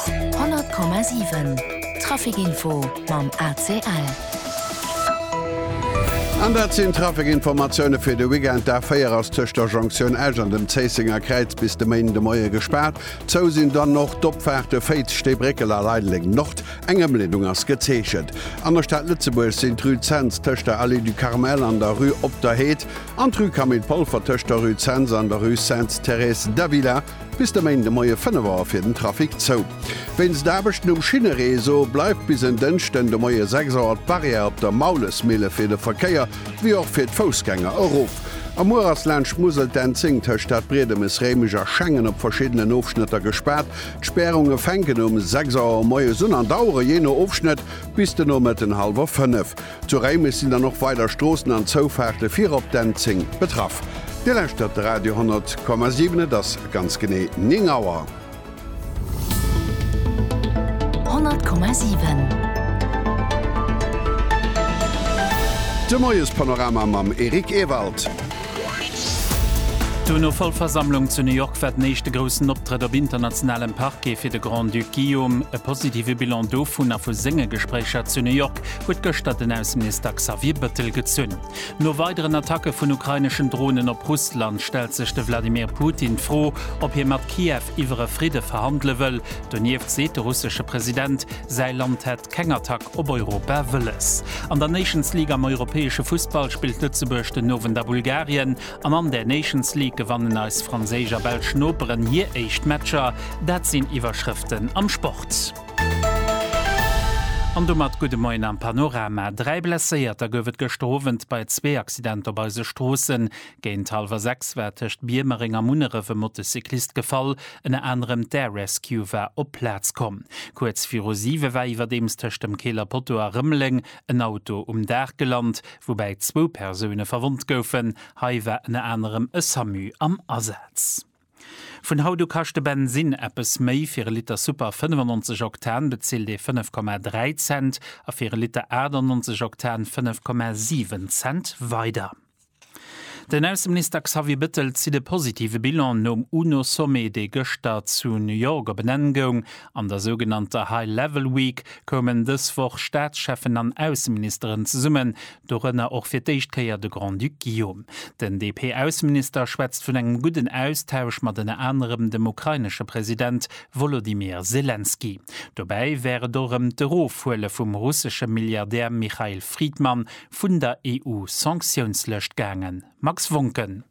100,7 Trafic Info mam ACL. An dat sinn d'Trafic-Informatioune fir de Weekend. D'A4 ass tëscht der Jonktioun Esch an dem Zéissenger Kräiz bis de Méinden de Moie gespaart. Zou sinn dann och d'Opfaarte Féiz, Steebréckel a Leideleng Nord. Eng Ëmleedung ass gezeechent. An der Stad Lëtzebuerg sinn d'Rue Zens tëscht der Allée du Carmel an der Rue Op der Heed an d'Rue Camille Polfer tëscht der Rue Zens an der Rue Sainte-Thérèse d'Avila Bis de Méinde Moie 5 Auer fir den Trafic zou. Wéinst Aarbechten um Schinnereseau bleift bis en Dënschden de Moie 6 Auer d'Barrière op der Maulesmille fir de Verkéier wéi och fir d'Foussgänger erof. A muer ass laanscht d'Musel d'N10 tëscht Stadbriedemes, Réimech a Schengen op verschiddenen Ofschnëtter gespaart. D'Spärunge fänken um 6 Auer moies un an dauere jee no Ofschnëtt bis de Nomëtten hallwer 5. Zu Réimech sinn dann och weider Stroossen an Zoufaarte virop d'N10 betraff. Dir lauschtert de Radio 10,7, et ass ganz genee 9 Auer. 10,7. De Moiespanorama mam Eric Ewald. D'UNO-Vollversammlung zu New York war den éischte groussen Optrëtt op internationalem Parquet fir de Grand-Duc Guillaume. E positive Bilan dovun a vu senge Gespréicher zu New York. Donetsk huet gëschter den Ausseminister Xavier Bëttel gezunn. No weideren Attacke vun ukraineschen Dronen op Russland stellt sech de Wladimir Putin d'Fro, ob hie mat Kiew iwwer e Fridde verhandele wëll. Donieft seet de russesche President, säi Land hätt keng Attack op Europa wëlles. An der Nations League am europäesche Fussball spillt Lëtzebuerg den Owend a Bulgarien an an der Nations League gewannen eis franséisch a belsch Noperen hir éischt Matcher. Dat sinn Iwwerschrëften am Sport. An domat gudde Moien am Panorama. Dräi Blesséierter gouf et gëschter Owend bei zwee Accidenter op eise Stroossen. Géint hallwer sechs war tëscht Biermereng a Munneref e Motocyclist gefall. Ënner anerem d'Air Rescue war op d'Plaz komm. Kuerz viru siwe war iwwerdeems tëscht dem Keeler Poteau a Rëmeleng en Auto um Daach gelant, woubäi zwou Persoune verwonnt goufen. Hei war ënner anerem e Samu am Asaz. Vun haut u kascht de Bensinn eppes méi, fir e Liter Super 95 Oktan bezilt ee 5,3 Cent a fir e Liter 98 Oktan 5,7 Cent weider. Den Ausseminister Xavier Bettel zitt e positive Bilan nom UNO-Sommet, dee gëschter zu New York op en Enn goung. An der sougenannter High Level Week koumen dës Woch Staatscheffen an Ausseministeren zesummen, Dorënner och fir d'éischt Kéier de Grand-Duc Guillaume. Den DP-Ausseminister schwätzt vun engem gudden Austausch mat ënner anerem dem ukrainesche President Wolodymyr Selenskyj. Dobäi wär et och ëm d'Erofhuele vum russesche Milliardär Michail Fridman vun der EU-Sanktiounslëscht gaangen. Max Wontgen.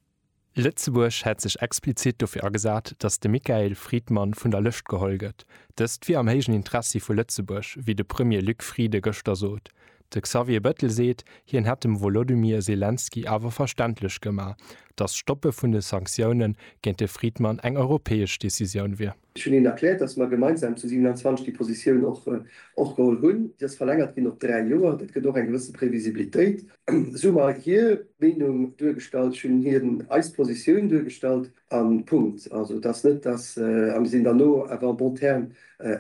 Lëtzebuerg hätt sech explizit dofir agesat, datt de Michael Friedmann vun der Lëscht geholl gëtt. Dëst wier am héijen Interessi vu Lëtzebuerg, wéi de Premier Luc Friede gëschter sot. De Xavier Bettel seet, hien hätt dem Wolodymyr Selenskyj awer verständlech gemaach, datt d'Stoppe vun de Sanktioune géint de Friedmann eng europäesch Decisioun wier. Ech hunn hinnen erkläert, dass mer gemeinsam zu 27 déi Positioun och geholl hunn. Déi ass verlängert ginn op dräi Joer. Dat gëtt och eng gewësse Previsibilitéit. Esou hu mer hir Meenung duergestallt. Ech hunn hinnen eis Positioun duergestallt a Punkt. Also et ass net, dass. A mir sinn dann no awer en bon terme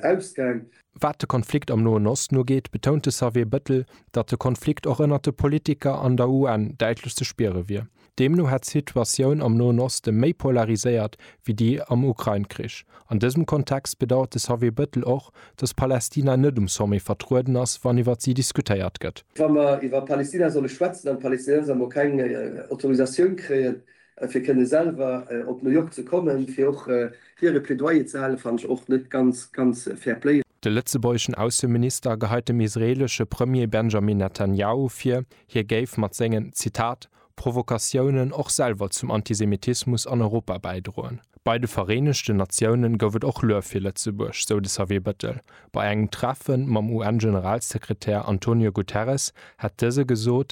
ausgaang. Wat de Konflikt am Noen Osten ugeet, betount de Xavier Bettel, datt de Konflikt och ënnert de Politiker an der UN däitlech ze spiere wier. Deemno hätt d'Situatioun am Noen Oste méi polariséiert wéi déi am Ukrain-Krich. An dësem Kontext bedauert de Xavier Bettel och, datt Palästina net um Sommet vertrueden ass, wann iwwer si diskutéiert gëtt. Wa mer iwwer Palästina solle schwätzen an d'Palästinenser mol keng Autorisatioun kréien, fir kënne selwer op New York ze kommen, fir och hiere Plädoyer ze halen, fannen ech och net ganz, ganz fair play. De lëtzebuergeschen Ausseminister geheit dem israeelesche Premier Benjamin Netanjahu vir, hie géif mat sengen, Zitat, Provokatiounen och selwer zum Antisemitismus an Europa bäidroen. Bei de Vereenegten Natiounen gouf et och Luef fir Lëtzebuerg, sou de Xavier Bettel. Bei engem Treffe mam UN-Generalsekretär Antonio Guterres hätt dëse gesot,